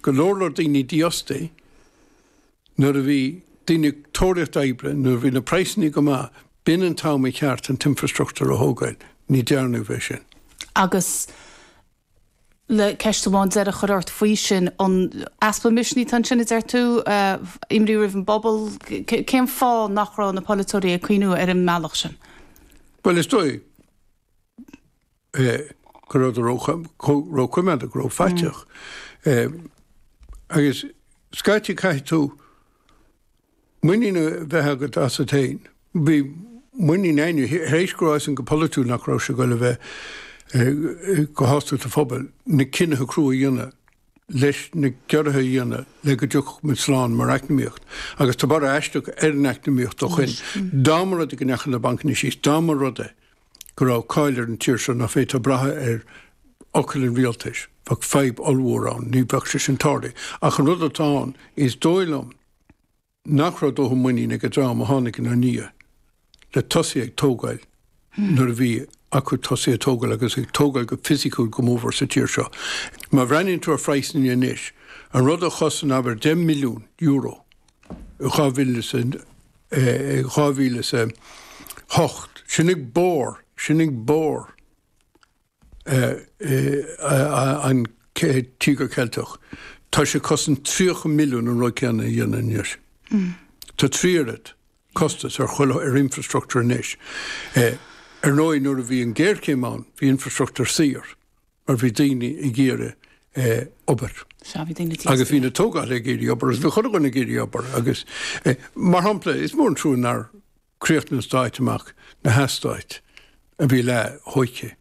go leor leor daoine dífhostaí nuair a bhí daoine ag tóraíocht oibre, nuair a bhí na praghsanna go maith, b'in an t-am ar cheart an t-infreastruchtúr a thógáil. Ní dhearnadh é sin. Agus le ceist amháin deiridh a chur ort faoi sin, an easpa misnigh atá ansin, a deir tú, imní roimh an bpobal, cén fáth nach raibh na polaiteoirí ag cuimhniú ar an mbealach sin? Bhuel, is dóigh. go raibh siad róchoimeádach, go raibh faiteach. Agus scaití caithfidh tú muinín a bheith agat asat féin. Bhí muinín againne tar éis go raibh fhios againn go polaitiúil nach raibh sé ag goil a bheith ag sásamh an phobail na cinnithe crua a dhéanamh leis na gciorruithe a dhéanamh le go dtiocfadh muid slán mar eacnamaíocht. Agus tá borradh aisteach ar an eacnamaíocht ó shoin. Dá mba rud é go ndeachaigh na bancanna síos, dá mba rud é, go raibh cáil ar an tír seo nach bhféadfá brath ar fhocal an rialtais, bheadh fadhb ollmhór ann, ní bheadh sé sin tarlaithe. Ach an rud atá ann, is dóigh liom nach raibh dóthain muinín ag an dream a tháinig ina ndiaidh le tosaí ag tógáil nuair a bhí acu tosaí ag tógáil agus ag tógáil go fisiciúil go mór sa tír seo. Má bhreathnaíonn tú ar phraghsanna anois, an rud a chosain abair deich milliún euro in dhá mhíle is a 2008. Sin ag barr, sin ag barr an Tíogair Cheiltigh. Tá sé ag cosaint 30 milliún an rud céanna a dhéanamh anois. Tá trí oiread costas ar chuile, ar infreastruchtúr anois. Ar ndóigh nuair a bhí an géarchéim ann bhí infreastruchtúr saor. mar bhí daoine ag iarraidh obair. Sea, bhí daoine ag. Agus bhí na tógálaithe ag iarraidh obair agus bhí chuile dhuine ag iarraidh obair agus, mar shampla, is mór an trua nár chríochnaigh an Stát amach na heastáit a bhí leath-thógtha,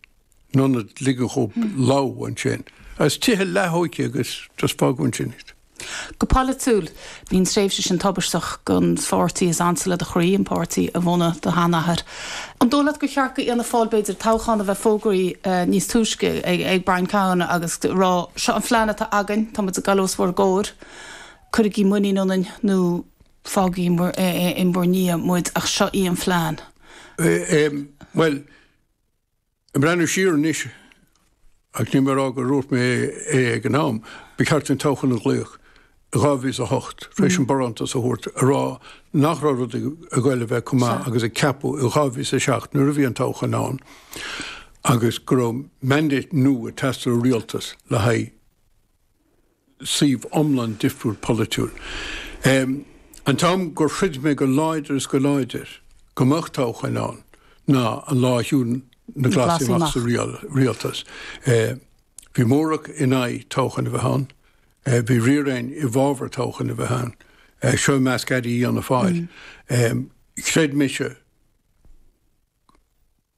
in ionad ligean dóibh lobhadh ansin, agus tithe leath-thógtha agus just fágadh ansin iad. Go polaitiúil, bhí an tréimhse sin tubaisteach don pháirtí is ansa le do chroí, an páirtí a bhunaigh do sheanathair. An dóigh leat gur cheart d'Fhianna Fáil, b'fhéidir, toghchán a bheith fógraithe níos túisce ag Brian Cowen agus a rá, seo an phlean atá againn, tá muid ag dul os bhur gcomhair, cuirigí muinín ionainn nó fágaigí in bhur ndiaidh muid ach seo í an phlean? Bhuel, Ag breathnú siar anois, agus níl mé ag rá gur dhúirt mé é ag an am, ba cheart an toghchán a ghlaoch i 2008, tar éis an barántas a thabhairt, a rá nach raibh rudaí ag goil a bheith chomh maith agus a ceapadh i 2007 nuair a bhí an toghchán ann agus go raibh mandate nua ag teastáil ó rialtas le haghaidh suíomh iomlán difriúil polaitiúil. An t-am gur chreid mé go láidir is go láidir go mbeadh toghcháin ann ná an lá a shiúil na Glasaigh amach sa rialtas. Bhí móramh in aghaidh toghcháin a bheith ann, bhí triúr againn i bhfabhar toghcháin a bheith ann, seo i measc airí Fhianna Fáil. Chreid mise,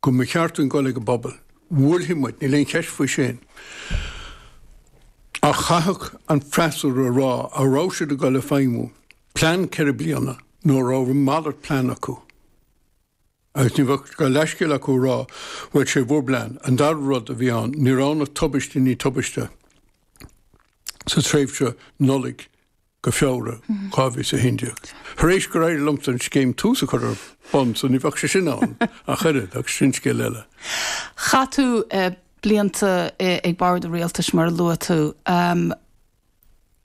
go mba cheart dúinn dul ag an bpobal. Bhuailfí muid, níl aon cheist faoi sin. Ach chaithfeadh an freasúra a rá an raibh siad ag dul ag feidhmiú plean ceithre bliana nó an raibh malairt plean acu. Agus ní bheadh de leithscéal acu a rá, bhuel, is é bhur bplean. An dara rud a bhí ann, ní raibh ann ach tubaiste i ndiaidh tubaiste sa tréimhse Nollaig go Feabhra 2011. Tar éis gur éirigh liomsa an scéim Tús a chur ar bun so ní bheadh sé sin ann ach oiread, ach sin scéal eile. Chaith tú blianta ag Bord an Rialtais mar a luaigh tú. An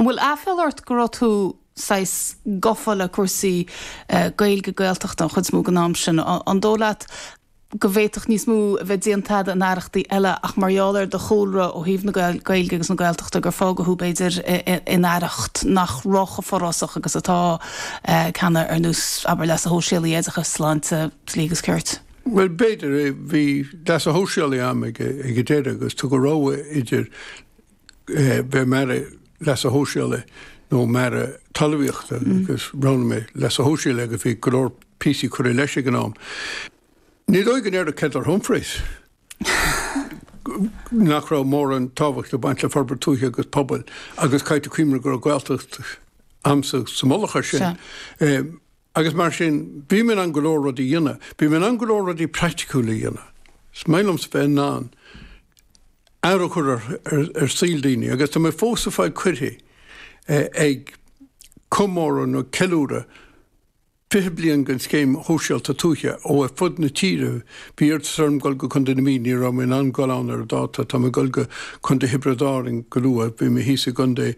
bhfuil aiféala ort go raibh tú saghas gafa le cúrsaí Gaeilge, Gaeltachta an chuid is mó den am sin? An dóigh leat go bhféadfadh níos mó a bheith déanta agat in aireachtaí eile ach mar gheall ar do chúlra ó thaobh na Gaeilge agus na Gaeltachta gur fágadh thú, b'fhéidir, in aireacht nach raibh chomh forásach agus atá i gceanna, ar nós, abair, leasa shóisialaigh, oideachais, sláinte, dlí agus cirt. Bhuel, b'fhéidir é. Bhí leasa shóisialaigh a'm ag an deireadh agus tugadh rogha idir bheith i m'Aire Leasa Shóisialaigh nó i m'Aire Talmhaíochta agus roghnaigh mé Leasa Shóisialaigh agus bhí go leor píosaí curtha leis ag an am. Ní dóigh liom go ndéarfadh Heather Humphreys nach raibh mórán tábhachta ag baint le forbairt tuaithe agus pobail agus caithfidh tú cuimhneamh go raibh Gaeltacht a'msa sa mullach ar sin. Agus mar sin, bhí mé in ann go leor rudaí a dhéanamh. Bhí mé in ann go leor rudaí praiticiúla a dhéanamh. Is maith liomsa bheith in ann athrú a chur ar shaol daoine agus tá mé fós ag fáil cuirí ag comóradh nó ceiliúradh 20 bliain den Scéim Shóisialta Tuaithe ó ar fud na tíre. Bhí iarratas orm dul go Contae na Mí, ní raibh mé in ann dul ann ar an dáta. Tá mé ag dul go Contae Thiobraid Árainn go luath. Bhí mé thíos i gContae